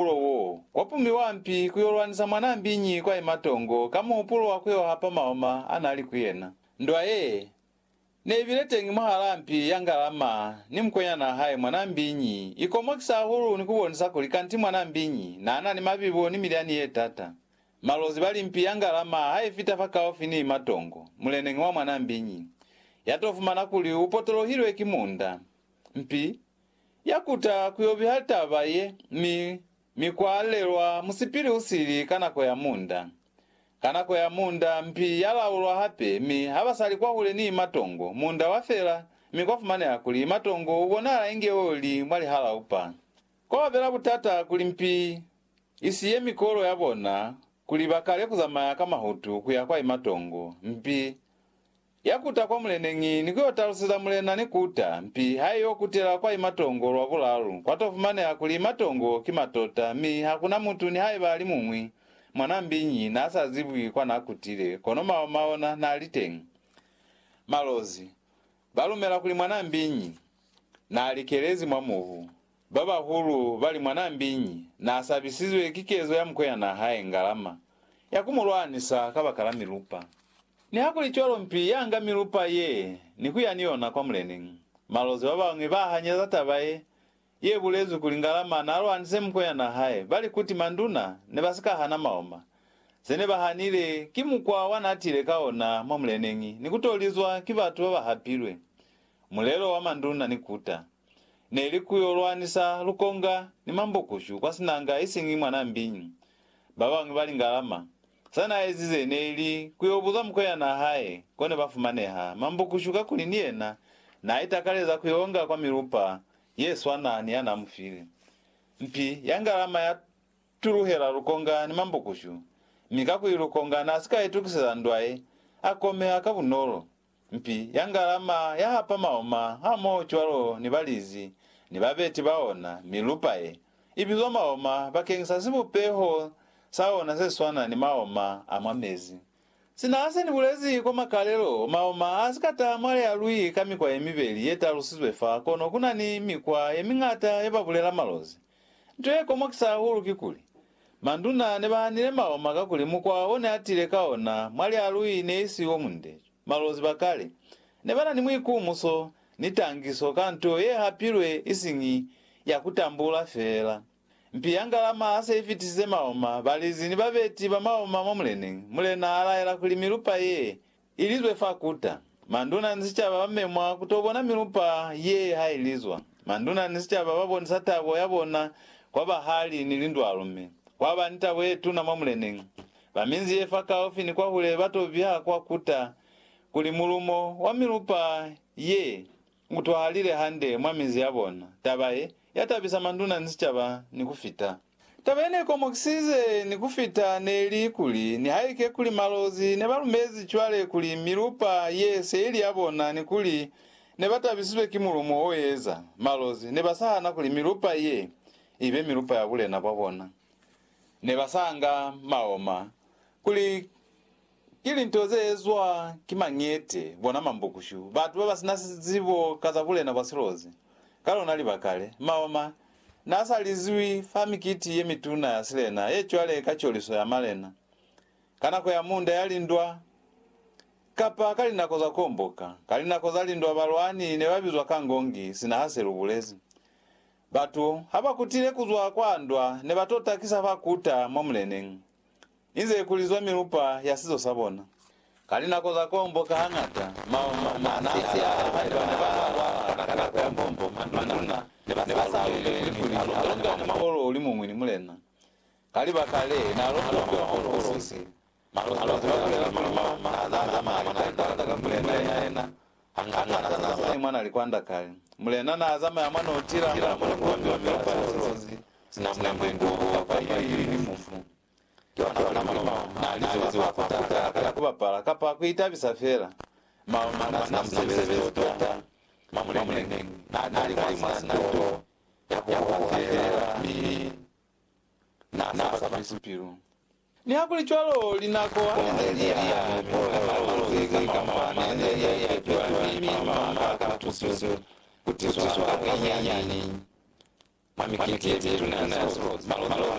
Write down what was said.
muhupulo wo wa pumiwa mpi ku yo lwanisa mwanaa mbiñi kwa ye matongo ka muhupulo wa ku yo hapa maoma a na li ku yena. Ndwa ye ne i bile teñi mwahalaa mpi ya Ngalama ni mukwenyanaa hae mwanaa mbiñi i komokisa hahulu ni ku bonisa kuli kanti mwanaa mbiñi naa na ni mabibo ni milyani ye tata. Malozi ba li mpi ya Ngalama ha i fita fakaufi ni matongo, muleneñi wa mwanaa mbiñi ya to fumana kuli u potolohilwe ki munda. Mpi. Ya kuta ku yo biha taba ye, mi, mi kwa lelwa musipili u sili ka nako ya munda. Ka nako ya munda, mpi ya laulwa hape, mi ha ba sa li kwahule ni matongo, munda wa fela, mi kwa fumaneha kuli matongo u bonahala inge o li mwa lihalaupa. Kwa ba bela butata kuli mpi i siye mikolo ya bona kuli ba kale ku zamaya ka mahutu ku ya kwa imatongo, mpi Ya kuta kwa muleneñi ni ku yo taluseza mulena ni kuta, mpi ha i yo kutela kwa imatongo lwa bulalu, kwa to fumaneha kuli imatongo ki matota, mi ha ku na mutu nihaiba ali muñwi, mwanaa mbiñi, na sa zibwi kwa na kutile, kono maoma ona na li teñi. Malozi, ba lumela kuli mwanaa mbiñi, na likelezi mwa mubu. Babahulu bali mwanaa mbiñi naasabisizwe ki kezo ya mukweanaa hae Ngalama ya kumulwanisa kabakala milupa. Nihakulicwalo mpi yaanga milupa ye ni kuya ni yona kwa muleni. Malozi babañwi bahanyeza taba ye yebulezwi kuli Ngalama naalwanise mukweanaa hae bali kuti manduna nebasika hana maoma, zenebahanile ki mukwa wanaatile ka ona mwa muleneñi ni kutolizwa ki batu babahapilwe. Mulelo wa manduna ni kuta. ne li ku yo lwanisa lukonga ni mambukushu kwa sinanga isiñi mwa Nambi. Ba bañwi ba lingalama. Sa n'a ezize ne li ku yo buza mukwenyana hae ko ne ba fumaneha mambukushu kakuli ni yena n'a itakaleza ku yo nga kwa milupa ye swana ni ya n'a mu file. Mpi ya ngalama ya tuluhela lukonga ni mambukushu, mi kakuli lukonga n'a si ka itukiseza ndwa ye, a komeha ka bunolo. Mpi ya ngalama ya hapa maoma hamoho cwalo ni balizi ni babeti ba ona, mi lupa ye, i bizwa maoma bakeng sa sibupeho sa ona se swana ni maoma a mwa mezi. Sina se ni bulezi kwa makalelo, maoma a si ka taha mwa lealwi ka mikwa ye mibeli ye talusizwe fa, kono ku na ni mikwa ye miñata ye ba bulela malozi Nto ye komokisa hahulu kikuli, manduna ne ba hanile maoma kakuli mukwa o ne a tile ka ona mwa lialui ne i si o munde. Malozi ba kale ne ba na ni muikumuso ni tangiso ka nto ye hapilwe isiñi ya ku tambula feela. Mpi ya ngalama ha se i fitisize maoma, balizi ni babeti ba maoma mwa muleneñi, mulena a laela kuli milupa ye Ilizwe fa kuta. Manduna ni sicaba ba memwa ku to bona milupa ye ha ilizwa. Manduna ni sicaba ba bonisa tabo ya bona kwa bahali ni lindwalu mi kwa ba ni tabo ye tuna mwa Mulening. Ba minzi ye fa kaufi ni kwahule ba to biha kwa kuta kuli mulumo wa milupa ye Mutwalile hande mwa minzi yabona. Taba ye, yatabisa manduna ni sicaba ni kufita. Taba yenekomokisize ni kufita neli kuli, nihaike kuli Malozi nebalumezi cwale kuli milupa ye se ili yabona ni kuli nebatabisizwe ki mulumo oeza, Malozi nebasahana kuli milupa ye ibe milupa ya bulena bwabona. Nebasanga maoma kuli. Ki linto ze ezwa ki mañete, bona mambukushu, batu baba sina zibo ka za bulena bwa silozi. Ka lona libaka le, Maoma na sa lizwi fa mikiti ye mituna ya silena ye cwale ka coliso ya malena, ka nako ya munda ya lindwa, kapa ka linako za komboka. Ka linako za lindwa balwani ne ba bizwa ka ngongi, sina ha se lu bulezi. Batu ha ba kutile kuzwa kwa ndwa ne ba to takisa fa kuta mwa muleneñi. Inze kulizwa milupa ya sizo sa bona. Ka linako za kombo ka hangata masisi a haiba ne ba lwala ka nako ya kombo, manduna ne ba sa lumeli kuli a longa ni muholo o li muñwi ni mulena. Ka libaka le, n'a longwa muholo o sisi. Malozi ba bulela kuli mwa maza a mañata likwanda ka mulena yena hangata n'a zamaya mwa na likwanda kale. Mulena n'a zamaya mwa n'o tila mwa mukondo wa milupa ya silozi sina mulengo kapa ye i lilimu. Ki ona mwana Maloma na li ziba kwa kuta ka ya ku bapala kapa ku itabisa fela. Maloma na sina musebezi tota. Mwa muleneñi, na ka li mwa sina to ya ku hoha fela mi na sa ba fisi pilu. Nihakulicwalo, linako ha li ne li ya, ne ku ola malozi ka Maloma ne ne li ya ipetola mi Maloma ha a ka tusiwa ku tizwa ka bunyinyani mwa mikiti ye mituna ya silozi. Malozi